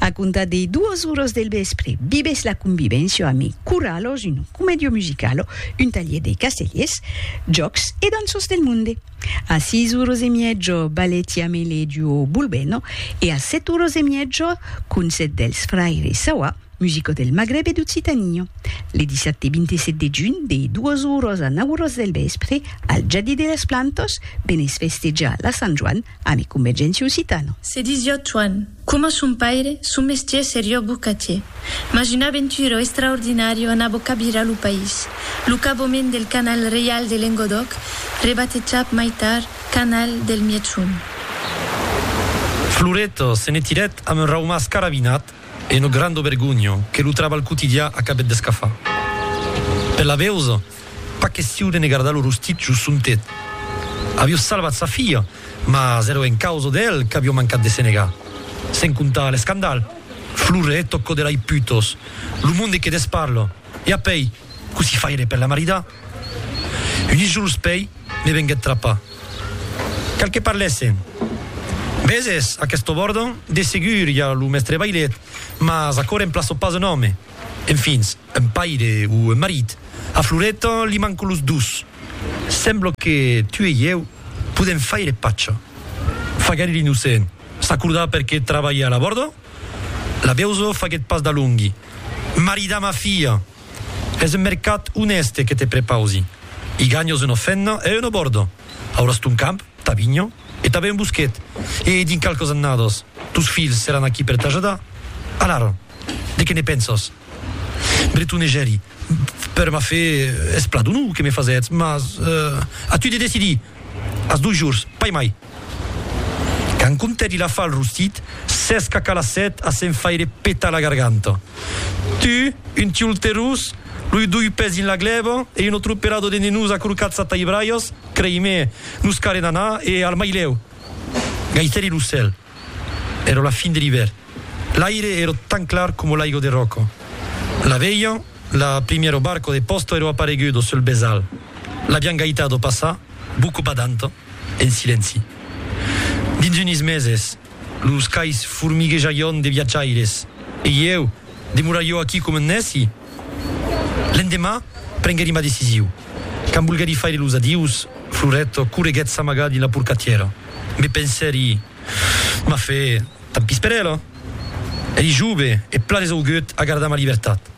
A comptar dei duas oras del vèspre, vivètz la convivéncia amb ei Corralos, un comèdio musicalo, un talhier dei castellers, jòcs e danços del monde. A seis oras e mièja, balèti amb ei lei duo Bulbeno e a sèt oras e mièja, concèrt dels fraires Sawa, musicos del Magreb e d'Occitania. Le dissabte 27 de junh, dei duas oras a nau oras del vèspre, al Jardí de las Plantas, venètz festejar la Sant Joan A ne Convergéncia Occitana. Se disió Tuan, coma son paire, son mestier serió bocatier. Mas una aventura extraordinària en abocabirar lo país, lo cabomènt del Canal Reial de Lengodòc, rebatejat mai tard Canal del Mièg-Sond. Floret se ne tirèt amb un raumàs carabinat e una granda vergonha que lo trabalh quotidià acabèt d'escafar. Per la veus. Pas question de ne gardar lo rostit jos son tet. Avió salvat sa filha, mas èra en causa d'el qu'avió mancat de se negar. Sen comptar l'escandal, Flore e Tocco de lai putos, lo monde que de's parla, e apèi, cossí faire per la maridar? Unes jorns pèi me venguèt trapar. Cal que parlèssen. Veses, a quest obòrdan, de segur i a lo mèstre Bailet, mas aquò remplaça pas un òme. Enfin. Un paire o un marit? A Floreta li manco los dos. Sembla que tu e ieu podèm faire pacha. Faguèri l'innocent. S'acordar perqué trabalha a la bòrda? La veusa faguèt pas d'alongui. Maridar ma filha! Es un mercat onèste que te prepausi. I ganhas una fenna e una bòrda. Auràs ton camp, ta vinha e tanben un bosquet. E dins qualques annadas, tos filhs seràn aquí per t'ajudar. Alara, de qué ne pensas? Bretonejèri, per m'a fer espladonor que me fasètz, mas a tu de decidir, as dos jors, pas mai. Quand comptèt il afa el rostit, s'esca calassèt a se'n faire petar la garganta. Tu, un tiolterós, loi doi pès dins la glèba e un autre operador de nenós acorcats a taibralhas, crei-me, nos carem anar e al mailèu! Gaitèri lo cèl. Èra la fin de l'ivèrn. L'aire èra tan clar coma l'aigo de ròca. La veian, la primièro barco de pòsta èra aparegudo sul besal. L'avián gaitado passar, boca badanta, en silenci. Dins unis meses, los cais formiguejaion de viatjaires. E ieu, demorarió aquí coma un nèci? L'endemà, prenguèri ma decisiu. Quand volguèri faire los adius, Floret correguèt s'amagar dins la porcatièra. Me pensèri, M'a fe, tant pis per ela. Eri jove e plan esaugut a gardar ma libertat.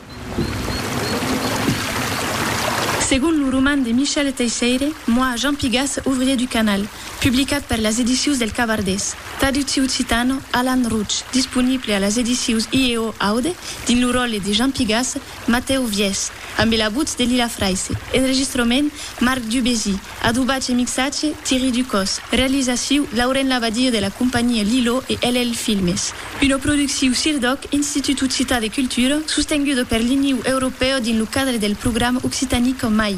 Segon lo roman de Michel Teisseire, moi, Jean Pigas, ouvrier du Canal, Publicat per las Edicius del Cavardés. Traducciu occitano, Alan Routch, disponible a las Edicius IEO Aude, dins lo ròtle de Jean Pigasse, Matèu Viès, ambe la votz de Lila Fraisse. Enregistrament, Marc Dubésy. Adobatge e mixatge, Thierry Ducos. Realizaciu, Lauren Labadie de la companhia Lilo e LL Filmes. Una producciu CIRDOC, Institut Occitan de Cultura, sostenguda per l'Iniu Europèu dins lo cadre del programa Occitanie qu'en mai.